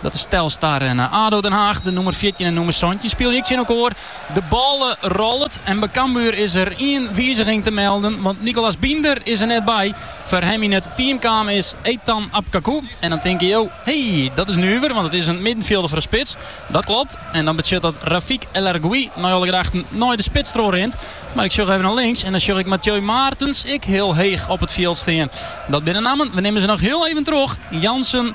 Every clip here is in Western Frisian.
Dat is Telstar en ADO Den Haag. De nûmer fjirtjin en nûmer santjin spylje ek tsjinokoar. De bal rollet en by Cambuur is der ien wiziging te melden, want Nicolas Binder is der net by. Foar him yn it team kaam is Ethan Apkakou. En dan tinke jo, hey, dat is nuver, want it is in middenfjilder foar in spits. Dat klopt. En dan betsjut dat Rafik El Arguioui nei alle gedachten nei de spits trochrint. Mar ik sjoch even nei links en dan sjoch ik Mathieu Maertens ek hiel heech op it fjild stean. Dat binne nammen, we nimmen se noch hiel even troch, Jansen,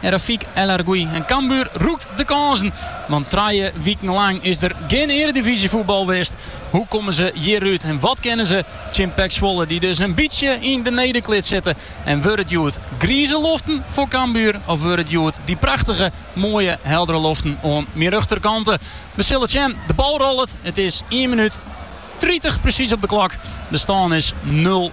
En Rafik El Arguioui en Cambuur rûkt de kânsen. Want trije wiken lang is der gjin earedivyzjefoetbal west. Hoe komme se hjirút en wat kinne se tsjin PEC Zwolle dy't dus in bytsje yn de nederklits sitte? En wurde it hjoed grize loften foar Cambuur of wurde it hjoed dy prachtige, moaie, heldere loften oan myn rjochterkante? We sille it sjen. De bal rollet, it is ien minút tritich presys op de klok. De stân is nul.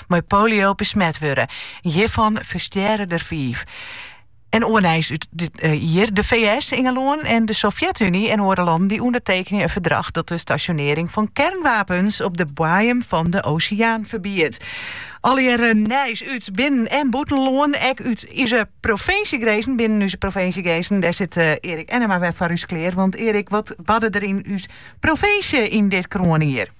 mei polio besmet wurde. Hjirfan ferstjerre der fiif. En oar nijs út dit jier. De FS, Ingelân en de Sovjet-Uny en oare lannen dy ûndertekenje in ferdrach dat de stasjonearring fan kernwapens op de boaiem fan de oseaan ferbiedt. Allegearre nijs út binnen- en bûtenlân, ek út úze provinsjegrinzen. Binnen úze provinsjegrinzen, dêr sit Erik Ennema wer foar ús klear. Want Erik, wat barde der yn ús provinsje yn dit kroanjier?